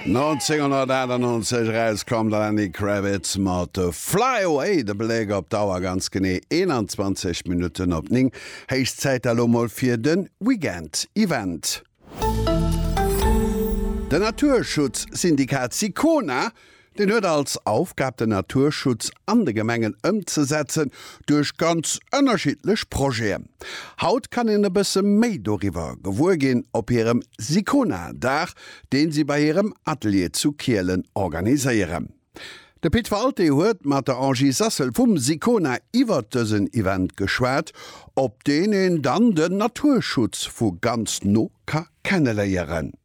1998 erauskomm, de Lenny Kravitz mat Fly Away, de Bléck op d'Auer, ganz genee 21 Minutten op 9. Héich Zäit da lo mol fir de Weekend Event. Den Naturschutzsyndikat Sicona Deen huet als Aufgab den Naturschutz an de Gemengen ëmzesetzen duerch ganz ënnerschiddlech Projeten. Haut kann een e bësse méi doriwwer gewuer ginn op hirem Sicona-Dag, deen si bei hirem Atelier zu Kielen organiséieren. De Pit Walté huet mat der Angie Sassel vum Sicona iwwert dësen Event geschwat, op deen een dann den Naturschutz vu ganz no ka kenneléieren.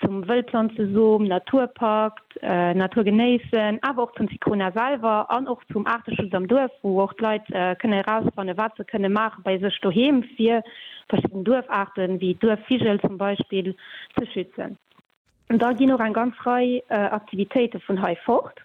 zum Wëllplanzesom, Naturpakt, Natur genéissen, awer och zum Sicona selwer an och zum Aarteschutz am Duerf, wou och d'Leit kënne erausfanne wat se kënne maache bei sech doheem, fir verschidden Duerfaarte wéi Duerfvigel zum Beispill ze schützen. Da ginn och eng ganz Rei Aktivitéite vun hei fort.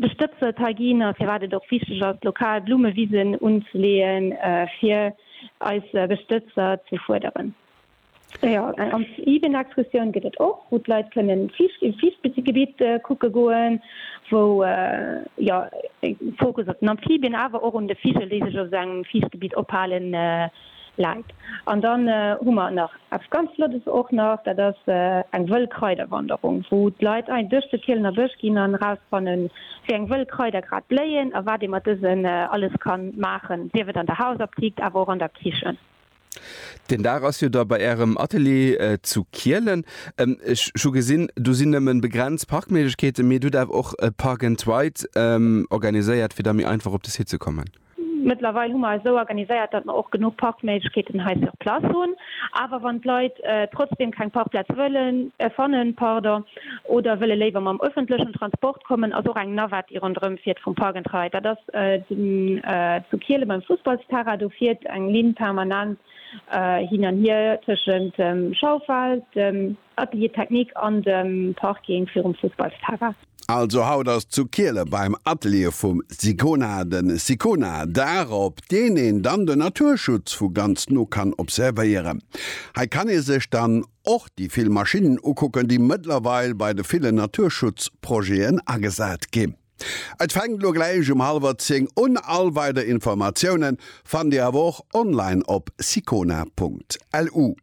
De Stëbsel hei ginn a firwat et och wichteg ass, lokal Blummewisen unzeleeën, fir eis Bestëtzer ze fuerderen. Jo, eng Amphibien-Excursioun gëtt et och, wou d'Leit kënnen e Fiichtgebitt kucke goen, wou jo e Fokus op den Amphibien, awer och un de Vigel, déi sech op esou engem Fiichtgebitt ophalen, läit. An dann hu mer nach eppes ganz Flottes och nach, dat ass eng wëll Kraiderwanderung, wou d'Leit ein duerch de Kielener Bësch ginn an erausfannen, wéi eng wëll Kraider grad bléien a wat ee mat dësen alles kann maachen, sief et an der Hausaptikt, awer och an der Kichen. Deen Dag ass jo da bei Ärem Atelier zu Kielen. Ech hu gesinn, do sinn nëmmen begrenzt Parkméiglechkeeten, mee dir hutt awer och e Park and Ride organiséiert, fir da méi einfach op de Site ze kommen. Mëttlerweil hu mer eis esou organiséiert, datt mer och genuch Parkméiglechkeeten hei sur place hunn. Awer wann d'Leit trotzdeem keng Parkplaz wëllen, fannen, pardon, oder wëlle léiwer mam öffentlechen Transport kommen, ass och eng Navette, déi ronderëm fiert, vum Park and Ride, dat ass zu Kiele beim Fussballsterrain, do fiert eng Linn permanent hin an hier tëschent dem Schaufel, dem. Atelier technique an dem Parking virum Fussballsterrain. Also haut ass zu Kiele beim Atelier vum Sicona den Sicona Dag op deen een dann den Naturschutz vu ganz no kann observéieren. Hei kann ee sech dann och déi vill Maschinnen ukucken déi mëttlerweil bei de villen Naturschutzprojeten agesat gi. Et fänkt lo gläich um halwer 10 un. All weider Informatiounen fannt dir awer och online op sicona.lu.